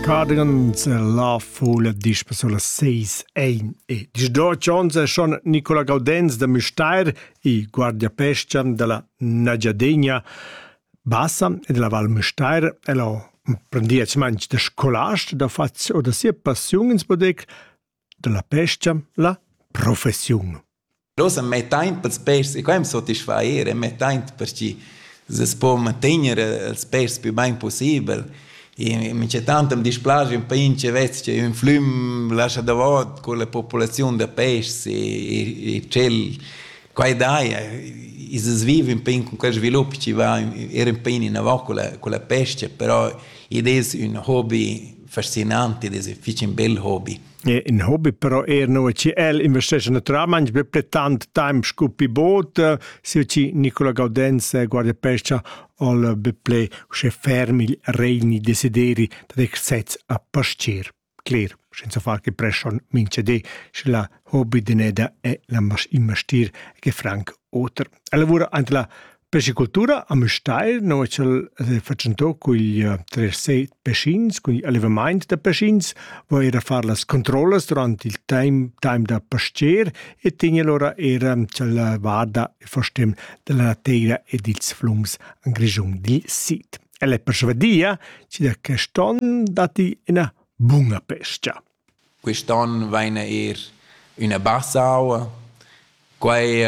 Cadence la fola dispa sulla 6 1 e dis doc ons è schon Nicola Gaudenz da Müstair e Guardia Pescian della Nagiadegna Bassa e della Val Müstair el ho prendiet manch da scolast da fats o da sia passiun ins bodec dalla pescha la professiun. Nus am mettain pels pers e quaim sotisfair e mettain perche se po mantegner els pers più bain possibel. E mi c'è tanto mi dispiace un pince vez che un flum lascia davot con la popolazione da pes e, e cel quai dai is vive un pin con quel sviluppo ci va era un pin in avant con la con la pesce però id è un hobby fascinante, das ist fich ein bel Hobby. In Hobby però er nu chi el investesce naturalmente per tant temp scu pi bod, sia chi Nicola Gaudenz guarda pescia al be ple usche ferm il regni desideri da dec sez a pascir. Cler, senza far che pression mince de, sche la hobby deneda è la investir che franc oter. Ella lavora ante la Pescicultura a Müstair no ch'el ha fatschentò cugl trer set pecins, cugl allevamaint da pecins, vo eir a far las controllas durant il taim taim da pastier e tegn alura era ch'ella varda e fastem dalla teira e dils flums en Grischun dil sid. El è persvadia chi da quest on datti ina buna pescha. Quist on vaina eir üna bassa aua. Quai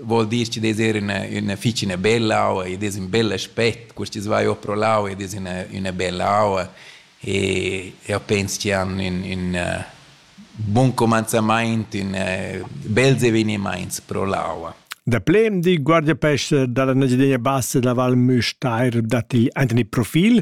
vuol dir chi'd es eir üna üna fich üna bella aua, id es ün bel aspet. Quist dis vaiu pro l'aua, id es üna üna bella aua e eu pens chi han ün ün bun cumanzamaint, ün bels evenimaints pro l'aua. Daplè di Guardiapesce da la Engiadina Bassa da Val Müstair datti aint ün profil